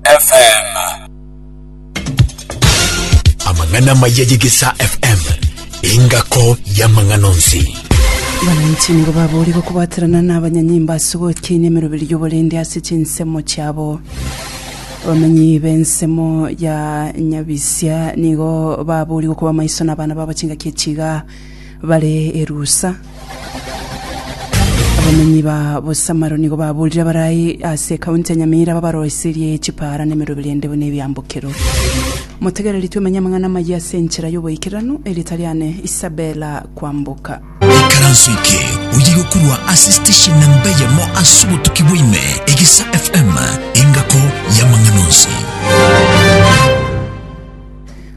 FM. Amang'ana maya y'Egesaa FM, engako y'amang'ana onsi. Abananchi nigo baboorire okobwaterana na abanyanyimbo ase ogokina emeroberi y'oborende ase chinsemo chiabo. Abamenyi b'ensemo ya Nyabisia nigo baboorire okoba amaiso na abana babo chingaki echiga. bare erusa. Abamenyi ba Bosamaro nigo baburire abarai ase ekaunti ya Nyamira babaroiserie chipaara na emeroberi ende buna ebiambokero. Motegereri twemenye amang'ana amayia ase enchera y'oboikeranu, erita riane Isabella Kwamboka. Ekaranso eke oye gokurwa ase station namba eyemo ase obotuki bwaime Egesa FM engako y'amang'ana onsi.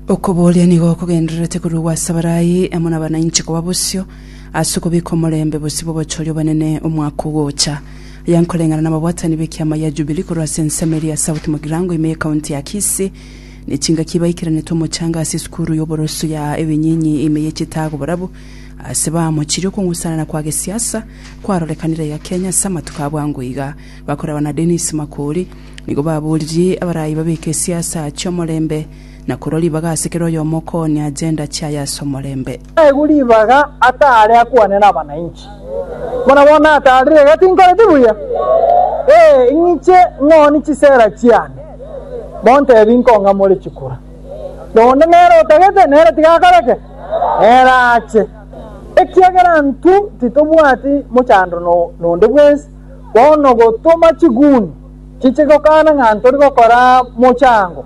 Okoboria nigo okogendererete korwa gw'Asabarayi amo nabanainche koba bosio, ase okobeka omorembe bosio bw'obochori obonene omwaka ogocha. Aya nkoreng'ana nababwatani b'ekiama gia Jubilee korwa ase ensemo eria ya South Mugirango ime y'Ekaunti ya Kisii, nechingaki baikeranete omochanga ase esukuru y'oboroso ya Ebinyinyi ime y'Echitago borabu ase baamochirie okong'usana na kwa gesiasa kwarorekanire iga Kenya ase amatuko abwango iga. Bakoraba na Dennis Makori nigo baboririe abarayi babeke esiasa chi'omorembe na korwa ribaga ase kera oyomo okoonia agenda chiaye ase omorembe. Naigwe ribaga ataare akwane nabanainchi, buna bono ataarire iga tinkoreti buya. Ee, ing'iche ng'ooni chisera chiane, montebi nkong'amore chikura. Noonde nere otagete, nere tigakoreke, nere ache. Ekiagera intwe titobwati mochando nonde bwensi, bono gotoma chiguni chiche gokana ng'a ntori gokora mochango.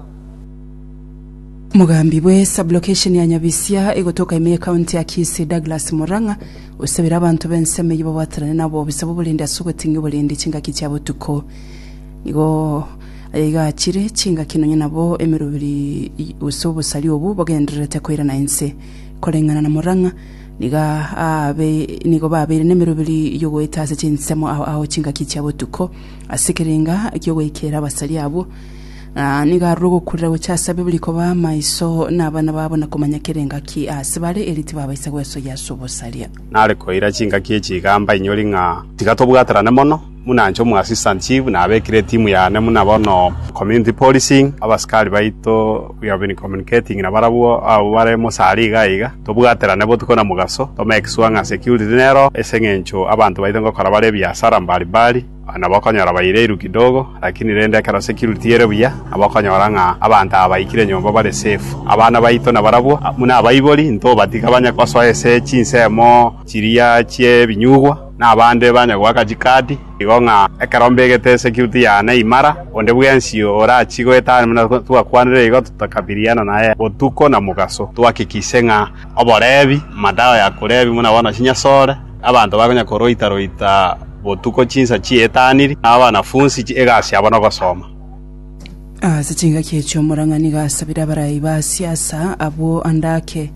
Mogambi bwe sublocation ya Nyabisia egotoka ime ye county ya Kisii Douglas Murang'a osabire abanto b'ensemo eyio babwaterane na obobisa bw'oborendi ase ogoting'ia oborendi chingaki chia botuko. Nigo ayaigachire chingaki nonya nabo emeroberi gose obosari obwo bogendererete koirana inse. Koreng'ana na Murang'a, nigo aabe nigo babeire nemeroberi yogoeta ase chinsemo ao ao chingaki chia botuko ase ekerenga eki'ogoikera abasari abwo. Ng'a nigo arure ogokurera gochia ase ababo riko b'amaiso, na abana babo, na komanya kera engaki ase bare, erio tibabaisa gwesoyia ase obosaria. Nare koira chingaki echi igamba inyori ng'a tiga tobwaterane mono, buna inche omoassistant chief nabekire etimu yane buna bono, community policing, abasikari baito we have been communicating nabarabwo abwo bare mosari iga iga, tobwaterane botuko na mogaso, to make sure ng'a security nero ase eng'encho abanto baito ngokora bare ebiasara mbari mbari. Nabo okonyora baireiru kidogo, lakini rende ekero ase kirutiere buya, nabo okonyora ng'a abanto aba baikire nyomba bare safe. Abana baito nabarabwo, buna abaibori, ntobatiga banye gosoa ase chinsemo chiria chi'ebinyugwa, na abande banye goaka chikadi, igo ng'a ekero mbegete security yane imara, onde bwensi orachi goetania buna twakwanire igo, totakabirirana naye botuko na mogaso, twahakikishe ng'a Oboreebi, Amadawa ya koreebia buna bono chinyasore, abanto bakonya koroita-roita botuko chinsa chi'etaniri, na abanafunsi egasi yabo nogosoma. Ase chingaki echi omorang'ani gasabire abarai ba siasa abwo ande ake,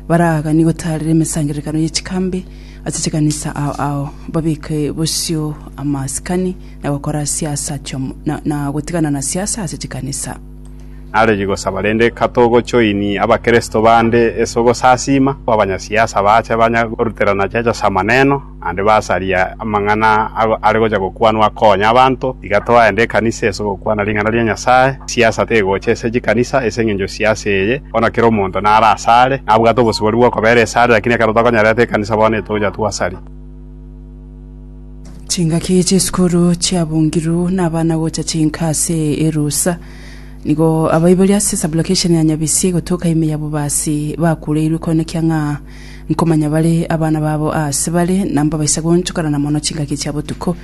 baraganie gotaarera emesangererekano ye chikambi ase chikanisa ao ao, babeke bosio amasikani na gokora siasa na gotigana na siasa ase chikanisa. Narenge gosaba rende katogochoini Abakristo bande ase ogosasiima, abanyasiasa baache banya goruterana chiacha chi'amaneno, naende basaria amang'ana are gocha gokwanwa akonya abanto. Tiga twaende ekanisa ase ogokwana ring'ana ria Nyasae. Siasa tegocha ase chikanisa ase engencho siasa eye, bono kera omonto nare asare, nabwate obosibori bw'okobera esare, lakini ekero tokonyererete ekanisa bono netogocha twasaria. Chingaki chi'esukuru chiabungirwe nabana gocha chinka ase erusa. Nigo abaibori ase sublokesheni ya Nyabisie gotoka ime ya Bobasi bakureirwe konekia ng'a nkomanya bare abana babo aase bare na mbabaisa goonchokana na mono chingaki chia botuko.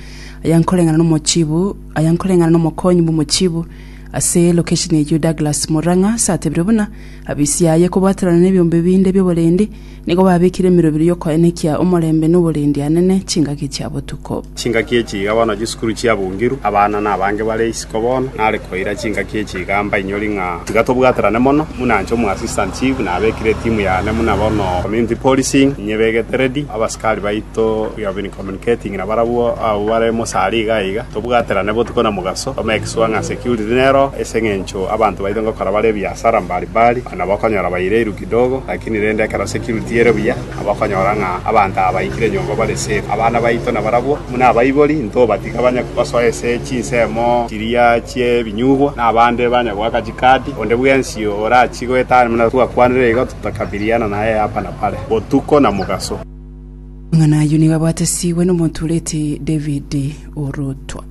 Aya nkoreng'ana n'omochibu aya nkoreng'ana n'omokonyi bw'omochibu ase lokesheni eyio Douglas Murang'a ase atebire buna abisia aye kobwaterana nebiombe binde bi'oborendi Nigo babekire emerobero y'okoenekia omorembe noborendi-anene chingaki chia botuko. Chingaki echi iga bono chisukuru chiabungiru, abana nabange bare isiko bono. Nare koira chingaki echi iga mbainyori ng'a tiga tobwaterane mono, buna inche omoassistant chief nabekire etimu yane buna bono community policing inyebegete ready, abasikari baito we have been communicating nabarabwo abwo bare mosari iga iga, tobwaterane botuko na mogaso to make sure ng'a security nero ase eng'encho abanto baito ngokora bare ebiasara mbari mbari, onye nabo okonyora baire irukire. Kidogo, lakini rende ekero se kirutiere buya, abakonyora ng'a abanto aba baikire nyomba bare safe. Abana baito nabarabwo, buna abaibori, ntobatiga banye gosoa ase chinsemo chiria chi'ebinyugwa, na abande banye goaka chikadi. Onde bwensi orachie goetania buna twakwanire iga, totokabiliana naye hapa na pale, botuko na mogaso. Amang'ana ayio nigo abatesigwe n'omonto oreti David orotwa.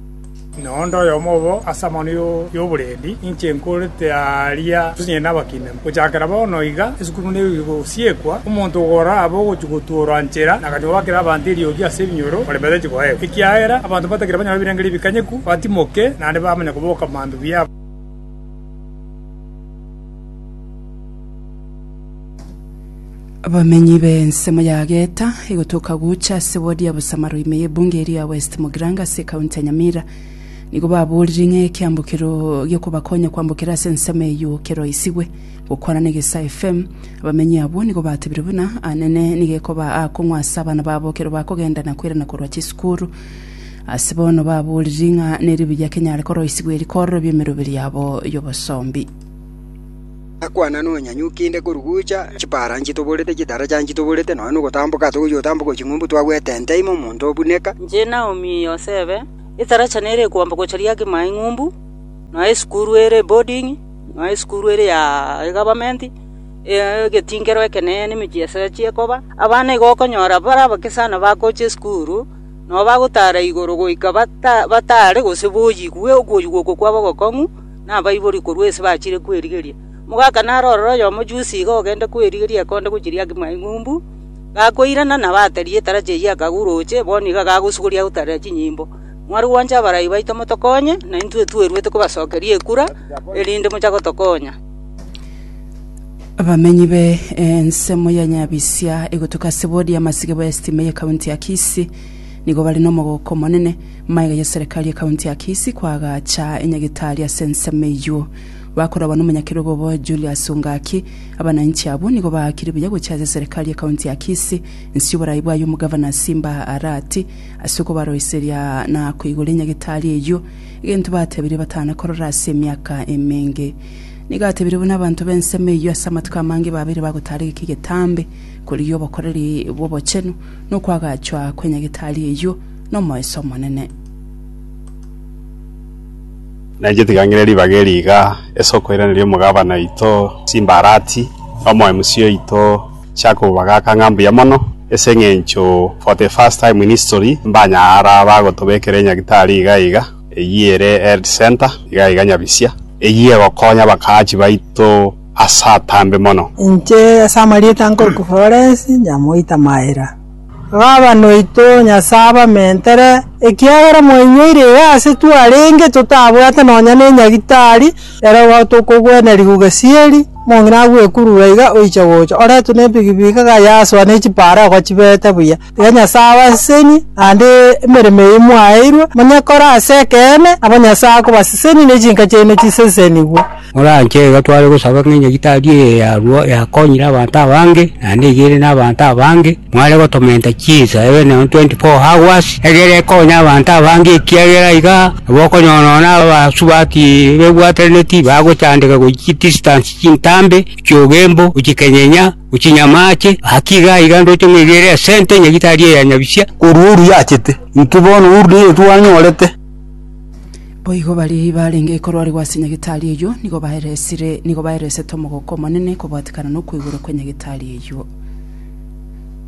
Na onde oyomo obo ase amang'ana y'oborendi inche nkorete aaria tosinyare nabakina. Gochakera bono iga esukuru negosiekwa, omonto ogoro abe ogochia gotuorwa nchera na agachia goakera abanto eriogi ase ebinyoro ore batache koegwa, ekiagera abanto batagire banyore ebirengererio ebikanyeku, batimoke, naende bamanye koboka mambia biabo. Abamenyi b'ensemo ya Geta egotoka gocha ase ward ya Busamaro ime y'ebunge eria ya West Mogiranga ase ekaunti ya Nyamira nigo baborire ng'a ekiambokero giokobakonya kwambokera ase ensemo eyio keroisigwe. Gokwana na Egesaa FM, abamenyi abwo nigo batebire buna Anene nigo ekoba aakong'u ase abana babo ekero bakogenda na koirana korwa chisukuru. Ase bono baboriri ng'a neribuya kenyare koroisigwa eri kororobia emeroberi yabo y'obosombi. Nakwana nonyanyuki kende korwa gocha, chipara nchitoborete, chitaracha nchitoborete, nonya nogotamboka togochia gotamboka ching'umbu twagwete ente ime omonto obuneka. Inche Naomi Yosebe, etaracha nere ekwamba gocha riake ime aing'umbu, nonya esukuru ere eboarding, nonya esukuru ere ya egavamenti, egetingero ekenene nemechie ase achie koba. Abana igo okonyora bare abake sana bagocha esukuru, nonya bagotara igoro goika bata batare gose boyigwe okoyigwa oko kwabo ogokong'u. nabaiborie korwa ense bachire kwerigeria. Omogaka naro ororo oyomo jusi iga ogende kwerigeria ekonde gochiria ngima eng'umbu, gakoirana na bateria etarachi eyio akagura oche, bono iga gagosugoria agotarera chinyimbo. Mware gwancha abarai baito motokonye, naintwe tweruete kobasokeria ekura, erinde mocha gotokonya. Abamenyi be ensemo ya Nyabisia egotuka ase bodi y'amasiga bwa estima y'ekaunti ya Kisii nigo bare nomogoko omonene, Maega ya Serikali ya County ya Kisii koagacha enyagetari ase ensemo eyio. Bakorabwa n'omonyakerogo obo Julius Ongaki, abananchi abwo nigo baakire buya gochia ase Serikali ya County ya Kisii inse oborai bwaye Omogavana Simba Arati ase okobaroiseria na koigora enyagetari eyio, egento batebirie batana korora ase emiaka emenge. Nigo atebirie buna abanto b'ensemo eyio ase amatuko amange babeire bagotaara egeka egetambe korigia obokoreri bw'obochenu na okoagachwa kw'enyagetari eyio, nomoeso omonene. Na inche tigang'ire ribaga eri iga, ase okoiraneria omogabana oito chimbarati, na omoemusi oito Jacob bagaaka ng'a mbuya mono, ase eng'encho for the first time in history mbanya ara bagotobekera enyagitari iga iga, eyio ere health centre iga iga nyabisia, eyio egokonya abakaachi baito ase atambe mono. Inche ase amarieta nkore Florence nyamoita Maira. “Baba noito, Nyasae abamentere, ekiagera mwainyoire iga aase twarenge totabwate nonya nenyagitari, ere igo tokogweneria gogesieri, omong'ina agwekurure iga oiche gocha, oretwe nebigibigi iga gayasoa ne chipaara igo chibete buya. Iga Nyasae abasesenie, naende emeremo eye mwaeirwe, monyekore ase ekeene, nabo Nyasae akobasesenia ne chinka chiaino chisesenigwe. Moranche iga tware gosaba ng'a enyagitari eye yarwo yakonyire abanto abange, naende iga ere nabanto abange, mware gotomenta chinsa ebe nonya 24 hours, egere ekonye abanto abange ekiagera iga nabo okonyora nonya abasubati bebwatanetie bagochandeka gochia chidistance chintambe, gochia ogembo, gochia kenyenya, gochia nyamache, gaki iga iga ndoche ng'a iga ere esente nyagitari eye ya nyabisia. Korwa oruya achete, intwe bono oru nigo twanyorete. Boigo baria barenge korwarigwa ase nyagetari eyio nigo baeresire nigo baeresete omogoko omonene kobwatekana nokweigora kwe nyagetari eyio.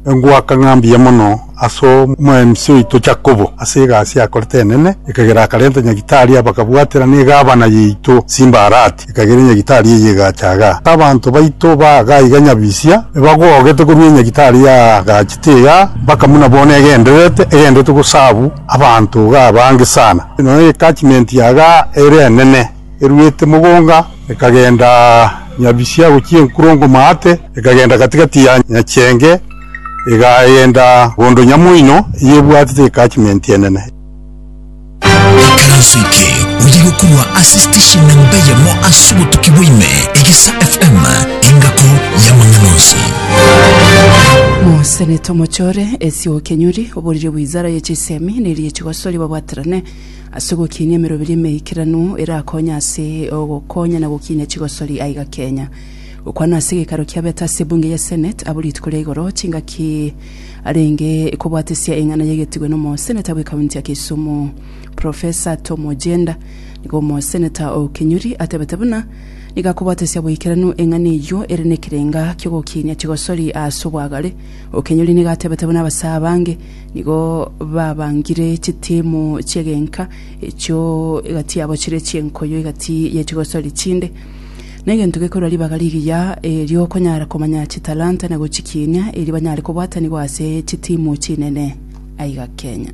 Engwaka ng'a mbuya mono ase omo MC oito Jakobo ase egasi yakorete enene, ekagera akarenta nyagitari aba akabwatera ne gavana yaito Simbarati, ekagera enyagitari eye egacha iga. Ase abanto baito ba iga iga nyabisia ebagogete korwa enyagitari yaagachete iga mpaka buna bono egendererete, egendererete gosabu. Abanto iga abange sana, nonya egecachment yaga ere enene eruete mogonga, ekagenda Nyabisia gochia enkurongo Maate, ekagenda gati-gati ya Nyachenge, egagenda bondo Nyamoino, eyebwatete egecachment enene. Ekaranso eke oye gokorwa ase station namba eyemo ase obotuki bwa ime, Egesa FM, engako y'amang'ana onsi. Mosenete omochore, Esio Kenyuri, Oboriri bw'inzara ye chisemi ne rie chigosori babwaterane ase ogokiinia emeroberi emeikeranu erakonye ase ogokonya na gokiinia chigosori aiga Kenya. Gokwana ase gekaro kia Beta ase ebunge ya Senate abo rituko ria igoro chingaki arenge kobwatesia eng'ana yegetigwe nomoseneta bwe county ya Kisumu Professor Tom Ojienda nigo omoseneta o Kinyuri atebete buna nigo akobwatesia boikeranu eng'ana eyio ere nekerenga kiogokiinia chigosori ase obwagare Okenyori nigo atebete buna abasaa abange nigo babangire chitimu chi'egenka, echio egati yabo chire chi'enkoyo egati ye chigosori chinde. Negento gekorua ribaga rigiya eri'okonyara komanya chitalanta na gochikiinia, erio banyare kobwataniwa ase chitimu chinene aiga Kenya.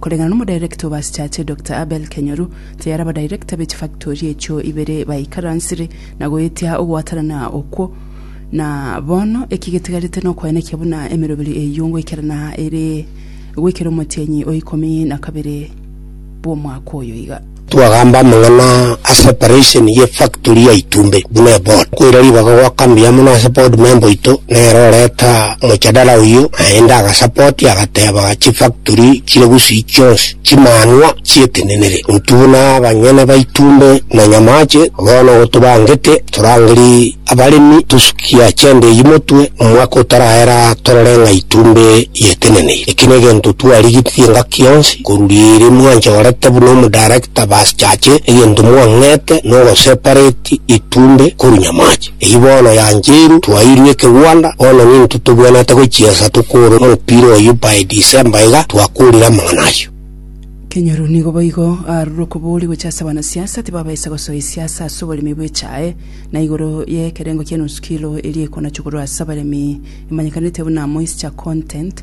Koreng'ana n'omodirector bw'Asichache, Doctor Abel Kenyoru, tayari abadirector be chifactori echio ibere baikaransire na goetia ogwatanana okwo, na bono eki getigarete nokoenekia buna emeroberi eyio ngoikerana ere goikera omotienyi o ikomi na kabere bw'omwaka oyo iga. Twagamba amang'ana a separation ye factory ya itumbe buna eboard. Koira ribaga gwa kambi yamo nase board member oito nere oreta mochadara oyio naende agasupport agateba chifactory chire gusii chionsi chimanwa chietenenere intwe buna abanyene ba itumbe na nyamache bono gotobangete torangeri Abaremi tosukia chende eyio motwe, omwaka otaraera torore ng'a itumbe yeteneneire. Eki negento twarigetie engaki yonsi koruria ere mwanchorete buna omodarekita basichache egento mwang'ete na ogosepareti itumbe korwa nyamache. Eyio bono yancheiru twairwe ekegwanda, bono nintwe tobwenerete gochiesa tokore omopira oyio by December iga twakorire amang'ana ayio. Kenyaru nigo boigo arure okobooria gocha ase abana siasa tibabaisa gosoa esiasa ase oboremi bw'echae. na igoro y'ekerengo ki'enusu kilo eria ekonachwa korwa ase abaremi emanyekanete buna moisture content.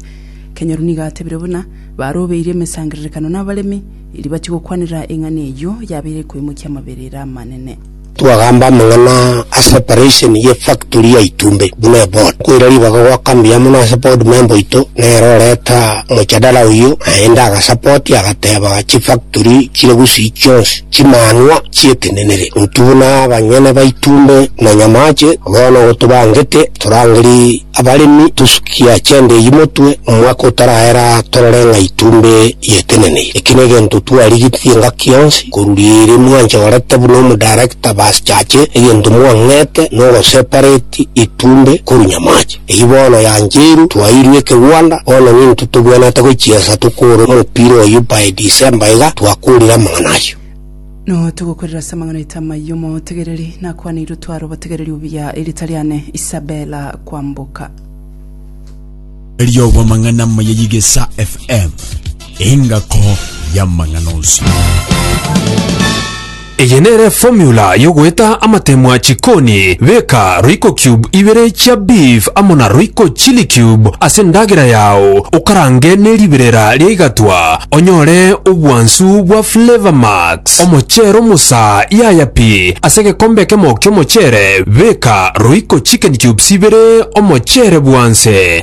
Kenyoru nigo atebire buna barobeirie emesangererekano n'abaremi, erio bachie gokwanera eng'ana eyio yabeire ekoimokia amaberera amanene. Twagamba amang'ana ase operation ye factory ya Itumbe buna eboard. Koira ribaga goaka mbuya mono ase board member oito nere oreta mojadala oyio naende agasupport agateba chifactory chire gusii chionsi. Chimanwa chi'eteneneri, ntubuna abanyene baito mbe na nyamache, bono gotobangete torangerie abaremi tosukia chende eyio motwe, omwaka otaraera torore ng'ai tumbe y'eteneneiri. Eki negento twarigetie engaki yonsi koruria ere mwanchorete buna omodarekta basichache egento mwang'ete nogosepareti itumbe korwa nyamache. Eyio bono yancheirwe, twairwe ekegwanda, bono nintwe togwenerete gochiesa tokore omopira oyio by December iga, twakorire amang'ana ayio. Nao togokorera ase amang'ana aito amayia omotegereri, nakwaneirwe tware obotegereri obuya erita riane Isabella kwamboka. Riobw'amang'ana amaya y'Igesa FM. Engako y'amang'ana onsi. Eye nere formula yogoeta amatemwa chikoni. Beka roiko cube ibere chia beef amo na roiko chili cube ase endagera yao okarange neriberera ria igatwa onyore obwansu bwa flavor max. Omochere omosaa yaya pi ase egekombe ekemo kiomochere beka roiko chicken cubes ibere omochere bwanse.